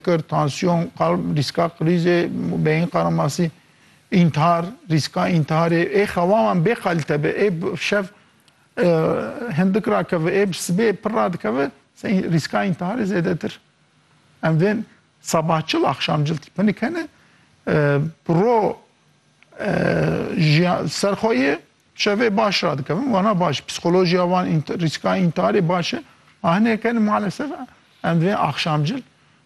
Kir, tansiyon, qalb, rîska krîzê, beyin qaramasî, întihar, rîska întiharê, ê xewa wan bê qalite be, ê şev hindik rakeve, ê bi sibê pir radikeve, rîska întiharê zêdetir. Em vê sebahçil, axşamcil tîpinik hene, bi ro jiyan ser xwe yê. Çevê baş radikevin, wana baş, psîkolojiya wan, rîska întiharê baş e. Ma hinê ken malesef em divê axşamcil bi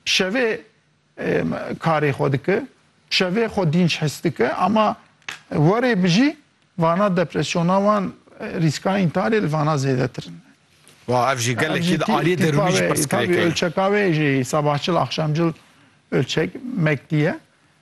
şevê karê xwe dike, bi şevê xwe dînç his dike ama warê bijî vana depresyona wan, rîska întiharê li vana zêdetir in. Wa ev jî gelekî di aliyê derûnî jî pirsgirêk e. Ölçeka wê jî sabahçil axşamcil ölçek mekdî ye.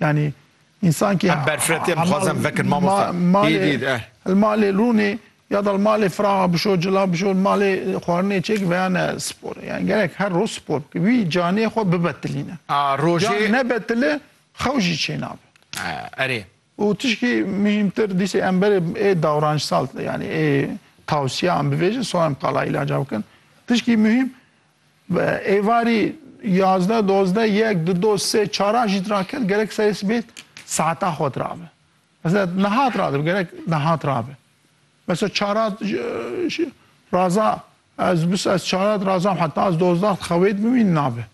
Yanî însan kî li malê rûnê ya da li malê firaxa bişo, cila bişo, li malê xwarinê çêkî veya ne spor e. Yanî gerek her roj spor bike. Wî caniyê xwe bibetilîne. Can nebetile xew jî çênabe. Erê. Û tişkî muhîmtir dîsê em berê ê dawranşsal yanî ê tewsiyan bivêjin sonra em qala îlaca bikin. Tişkî muhîm Bi êvarî yazdeh, dozdeh, yek, du, do, sê, çaran jî diraket gerek serê sibê saeta xwe dirabe. Mesela niha diradibe gerek niha dirabe. Mesela çara raza ez bis ez çara dirazam heta ez dozdeh dixewê dibimîn nabe.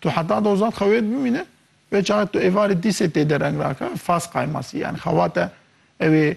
Tu heta dozdeh dixewê dibimîne vê çare tu êvarê dîsê tê dereng rake fas qaymasî yani xewate ew ê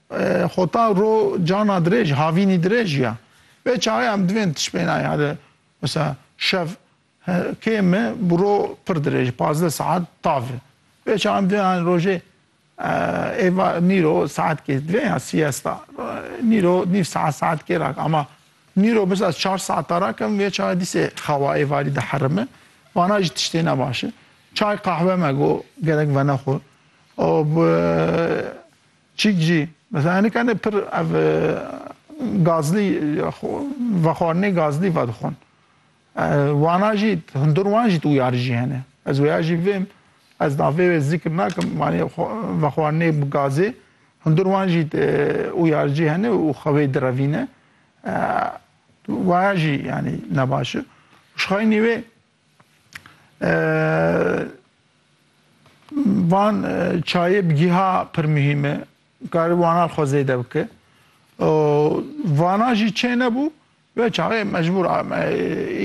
Xota ro cana dirêj, havînî dirêj ya. Vê çaxê em divên tişpênayê here. Misa şev kê mi bi ro pir dirêj, pazdeh saet tav e. Vê çaxê em divên anî rojê êva nîro saet kê divên ya siyesta. Nîro nîv saet saet kê ra ke. Ama nîro biz ez çar saeta ra ke vê çaxê dîsê xewa êvarî diherime. Vana jî tiştê ne baş e. Çay qahwe me go gerek venexwe. Û bi Çîk jî, mesela hinek hene pir ev gazlî vexwarinê gazlî vedixwin. Wana jî hundir wan jî tûyarî jî hene. Ez wêya jî vêm, ez navê wê zîkir nakim, wanê vexwarinê bi gazê, hundir wan jî ûyaricî hene û xwe wê direvîne. Waya jî yanî nebaş e. Jixwe nî wê. Van çayê bi giha pir muhîm e. Karî wanan xwe zêde bike. Vana jî çê nebû ve çaxê mecbûr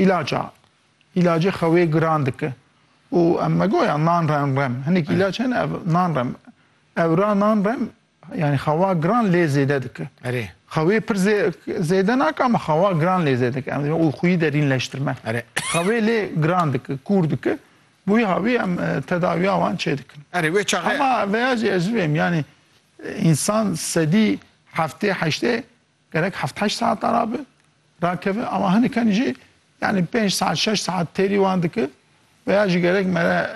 îlaç a. Îlacê xewê giran dike. Û em megoya nan rem. Hinek îlaç hene ev nan rem. Ewra nan rem Yanî xewa giran lê zêde dike. Erê. Xewê pir zê zêde nake ama xewa giran lê zêde dike. Em dibê olxuyî derînleştirme. Erê. Xewê lê giran dike, kûr dike. Bûyî havî em e, tedawiya wan çêdikin. Erê wê çaxê. Hema veya jî ez ji vê em yanî e, însan sedî heftê heştê Gerek heft heşt saetan rabe, rakeve ama hiniken jî yanî pênc saet şeş saet têrî wan dike ve ya jî gerek mere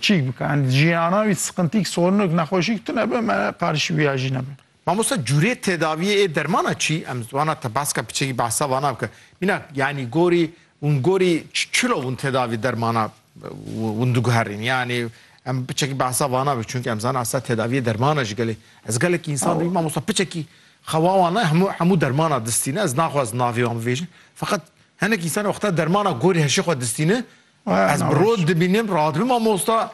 çîk bike. Yani jiyana wî siqintîk, sorinik, nexweşîk tune be me qarişî wî ya jî nebe. Mamosta cûrê tedaviyê ê dermana çî em ziwana te baska piçekî behsa vana bike. Mînak yanî gorî hûn gorî çilo hûn tedavî dermana Hûn diguherîn yanî em piçekî behsa vana bi çunki em zan asa tedaviyê dermana ji gelê ez gelekî insan dibî mamosta piçekî xewa wan ne hemû hemû dermana distîne ez naxwaz navê wan bivêjin feqet hinek insan wexta dermana gorî heşê xwe distîne ez bi rod dibînim rahat dibîm mamosta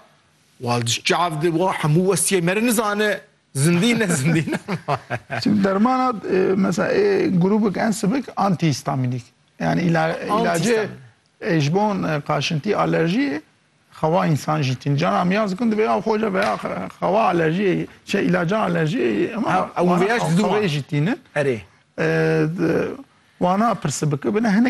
wal diş çav di wa hemû westiyê me re nizane zindî ne zindî ne Çim dermana mesela ê grubik ensibik antihîstamînîk yani îla îlacê Ji bon qaşintî alerjiyê xewa însan jî tîn. Caran miyaz dikin divê av xwe ve ya xewa alerjiyê çê îlaca alerjiyê wana xewê jî tînin. Erê. Wana pirsibikibine hinek.